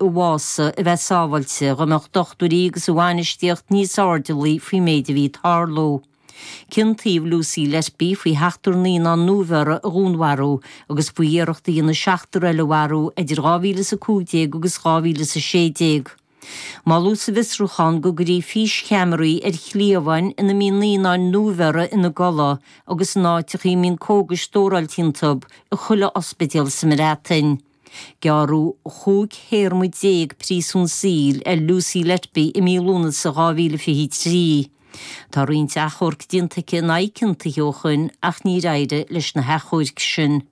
a mbás, a bheith sábháilte, dá mbeadh dochtúirí agus a bhainistíocht níos airdeallaí faoin méid a bhí ag tarlú. Ciontaíodh Lucy Letby faoi sheachtar naíonán nuabheirthe a dhúnmharú agus faoi iarracht a dhéanamh seachtar eile a mharú idir 2015 agus 2016. Moladh sa bhfiosrúchán go gcuirfí físcheamaraí ar chliabháin ina mbíonn naíonáin nuabheirthe ina gcodladh agus in áiteachaí a mbíonn cógais stóráilte iontub i chuile ospidéal sa mBreatain. Gearradh 15 théarma príosún saoil ar Lucy Letby i mí Lúnasa 2023. Tá roinnt achomharc déanta aici in aghaidh a ciontaithe ó shin ach níor éirigh leis na hachomhairc sin.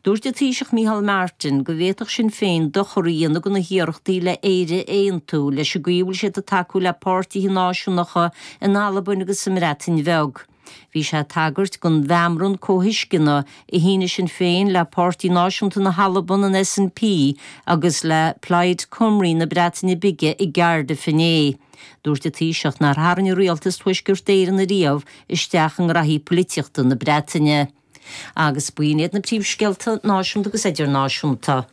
Dúirt an Taoiseach Micheál Martin go bhféadfadh Sinn Féin dochar a dhéanamh do na hiarrachtaí le Éire a aontú leis an gcaoi a bhfuil siad ag tacú le páirtithe náisiúnacha in Albain agus sa mBreatain Bheag. Bhí sé ag tagairt don mheamran comhthuisceana a shínigh Sinn Féin le Páirtí Náisiúnta na hAlban, an SNP, agus le Plaid Cymru na Breataine Bige i gCaerdydd inné. Dúirt an Taoiseach nár tharraing an rialtas Tuaisceart Éireann ariamh isteach i ngraithí polaitíochta na Breataine. Agus b'in iad na príomhscéalta náisiúnta agus idirnáisiúnta.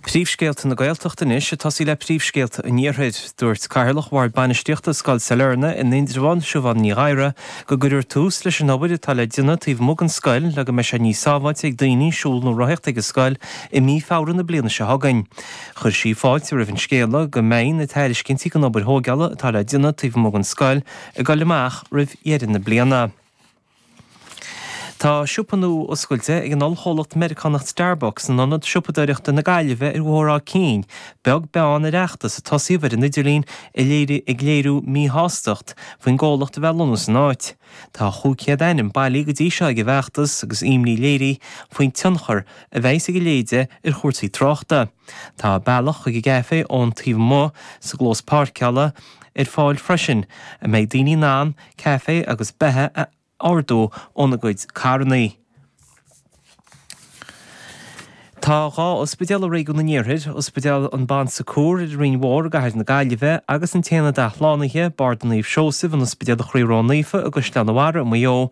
Príomhscéalta na Gaeltachta anois ag tosaí le príomhscéalta an Iarthair. Dúirt Cathaoirleach Bhord Bainistíochta Scoil Sailearna in Indreabhán, Siobhán Ní Ghadhra, go gcuirfear tús leis an obair atá le déanamh taobh amuigh den scoil le go mbeidh sé níos sábháilte ag daoine siúl nó rothaíocht ag an scoil i mí Feabhra na bliana seo chugainn. Chuir sí fáilte roimh an scéala go mbeidh na tairiscintí don obair thóigeála atá le déanamh taobh amuigh den scoil ag dul amach roimh dheireadh na bliana. Tá siopa nua oscailte ag an ollchomhlacht Meiriceánach Starbucks in Ionad Siopadóireachta na Gaillimhe ar Bhóthar Áth Cinn, beag beann ar fheachtas a tosaíodh ar an idirlíon ag léiriú míshástacht faoin gcomhlacht a bheith ag lonnú san áit. Tá 500 ainm bailithe go dtí seo ag an bhfeachtas agus imní léirithe faoin tionchar a bheidhs ag a leithéide ar chúrsaí tráchta. Tá bealach chuig an gcaifé ón taobh amuigh, sa gclós páirceála, ar fáil freisin, a mbeidh daoine in ann caife agus beatha a ordú óna gcuid carrannaí. Tá dhá ospidéal i Réigiún an Iarthair, Ospidéal an Bon Secours ar an Rinn Mhór i gcathair na Gaillimhe, agus an tAonad Athshlánaithe, Barda Naomh Seosaimh, in Ospidéal Chroí Ró-Naofa i gCaisleán a' Bharraigh i Maigh Eo,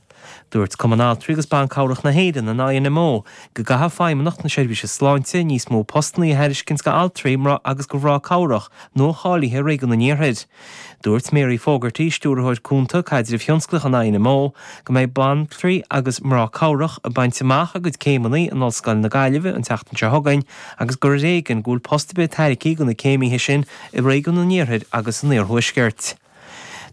Dúirt Cumann Altraí agus Ban Cabhrach na hÉireann, an INMO, go gcaithfeadh Feidhmeannacht na Seirbhíse Sláinte níos mó postannaí a thairiscint go altraí agus go mhrá cabhrach nua-cháilithe i Réigiún an Iarthair. Dúirt Mary Fogarty, Stiúrthóir Cúnta, Caidrimh Thionsclaíoch an INMO, go mbeidh banaltraí agus mná cabhrach ag baint amach a gcuid céimeanna in Ollscoil na Gaillimhe an tseachtain seo chugainn agus gur ar éigean go bhfuil post ar bith tairgthe do na céimithe sin i Réigiún an Iarthair agus an Iarthuaiscirt.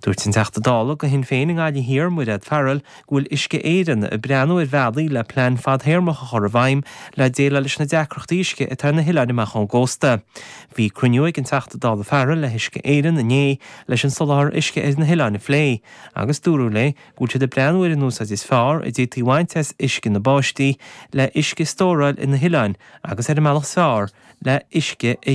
Dúirt an Teachta Dála de chuid Shinn Féin i nGaillimh Thiar, Mairéad Farrell, go bhfuil Uisce Éireann ag breathnú ar bhealaí le plean fadthéarmach a chur i bhfeidhm le déileáil leis na deacrachtaí uisce atá ar na hoileáin amach ón gcósta. Bhí cruinniú ag an Teachta Dála Farrell le hUisce Éireann inné leis an soláthar uisce ar na hoileáin a phlé agus dúradh léi go bhfuil siad ag breathnú ar an úsáid is fearr a d'fhéadfaí a bhaint as uisce na báistí le huisce a stóráil ar na hoileáin agus ar an mbealach is fearr le huisce a